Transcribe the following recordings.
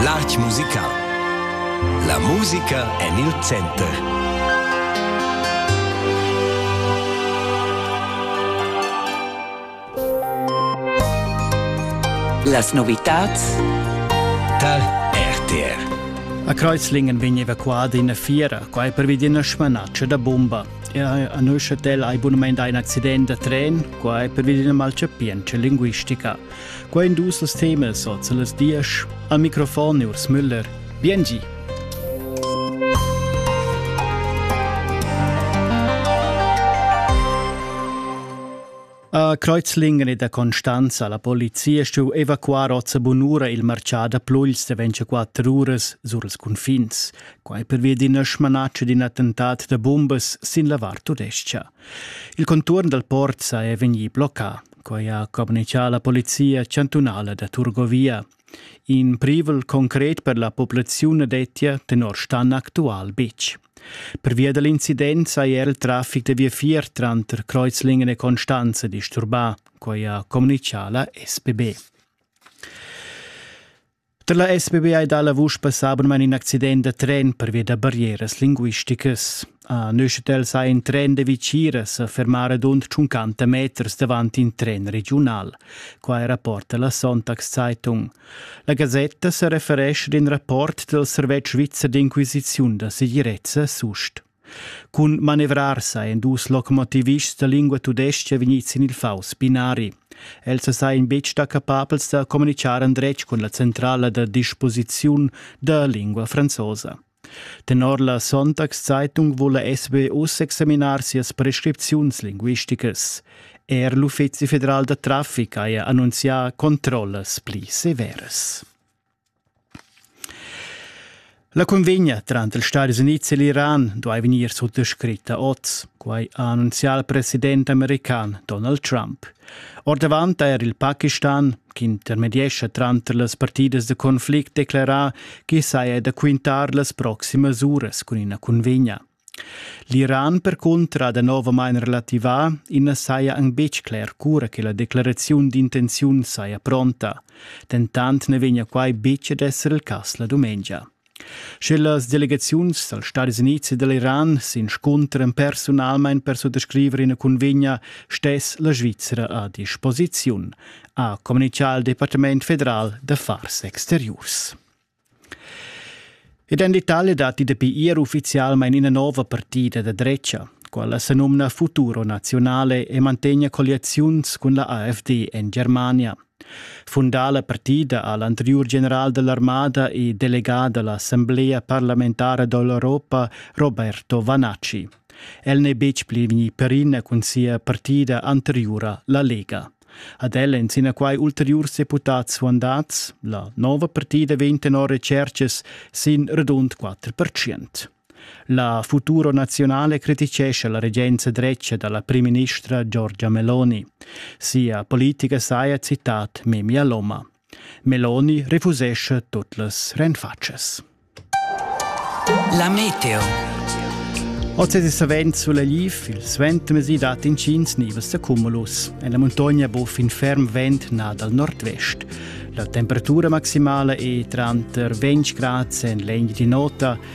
L'art musical. La musica en il center. Las novitads tar RTR. A Kreuzlingen vegn evacuada ina fiera, quai pervi d'ina smanatscha da bomba. Er a Neuchâtel ha abunament ein accident da tren, quai pervi d'ina malchapientscha linguistica. Quai in dus las temas ot las diesch. Al microfon Urs Müller. Biengi! A Kreuzlingen e da Constanza la polizia stu evacuar ozza bunura il marcià da Pluls de 24 uras sur els confins. Quai per via d'ina smanaccia d'in attentat da bumbas sin la Var tudescha. Il conturn dal port sa è vegnì bloccà. Quai ha communitgà la polizia chantunala da Turgovia. In privel concret per la populaziun dettia tenor Stan actual betg. Pervia da l'incident saja er il traffic da viafier tranter Kreuzlingen e Constanze disturbà, quai ha communitgà la SPB. Da la SBBI da la vusch passà abunmain in accident da tren pervia da barrieras linguisticas. A Neuchâtel sa in tren de Viciras a fermare dund 50 meters davant in tren regional. Qua è rapporta la Sonntagszeitung. La Gazzetta se referesce in rapport del Servetsch Svizzer d'inquisiziun da segirezza sust. Cun manevrar sa ein dus locomotivists da lingua tudestga vegnids sin il faus binari. Els sajan betg stà capabels da communitgar endretg cun la centrala da disposiziun da lingua franzosa. Tenor la Sonntagszeitung wolle SBU examinar sias prescripziuns linguisticas. Er l'Uffizi federal da traffic haja annunzià controllas pli severas. La cunvegna tranter ils Stadis Unids e l'Iran duai vegnir suttascritta oz, quai ha annunzià il president american Donald Trump. Ordavant ha er il Pakistan, ch'intermediescha tranter las partidas da conflict, declerà ch'i saja da quintar las proximas uras cun ina cunvegna. L'Iran percunter ha danovamain relativà, i na saja anc betg cler cura che la declaraziun d'intenziun saja pronta. Dentant na vegnia quai betg ad esser il cass la dumengia. Sche las delegaziuns dals Stadis Unids e da l'Iran s'inscuntran personalmain per suttascriver ina cunvegna, stess la Svizra a disposiziun, ha communitgà il Departament federal d'affars exteriurs. Ed en l'Italia datti dapi ier uffizialmain ina nova partida da dretga, quella senumna Futuro Nazionale e mantegna colliaziuns cun la AfD en Germania. Fundà la partida ha l'anteriur general dell'armada e delegà da l'Assemblea parlamentara dell'Europa Roberto Vanacci. El n'è betg pli vegnì perina cun sia partida anteriura, la Lega. Ad el ein sinaquai ulteriurs deputats suandats. La nova partida vegn tenor recercas sin radund 4 percent. La Futuro Nazionale criticesce la regenza dretga dalla primministra Giorgia Meloni. Sia politica saja citat Memia Loma. Meloni refusescha tut las renfatschas. La meteo. Oz è savent sulla liv, il suentermesi dat intgins nivas da cumulus. En la muntogna buff in ferm vent na dal nord-vest. La temperatura maximala è tranter 20 grad en l'egna di nota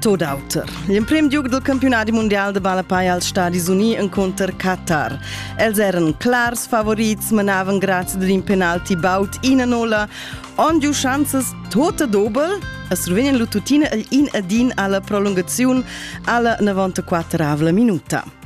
Tot auter. L'emprim giug del campionat mundial de ballapei als Stadis Uni enconter Qatar. Els eran clars favorits, manavan grazie d'un penalti baut ina nola, on giu chanzas tota dobel, a Slovenien lu tuttina in adin alla prolungaziun alla 94 minuta.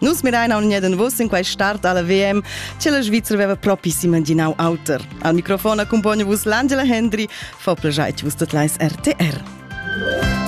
Nus mirein aunc en vos in quei start alla VM, che la Svizra veva propi s'imaginau auter. Al microfon accompagna vos l'Angela Hendry, fa plagiai vos tot leis RTR.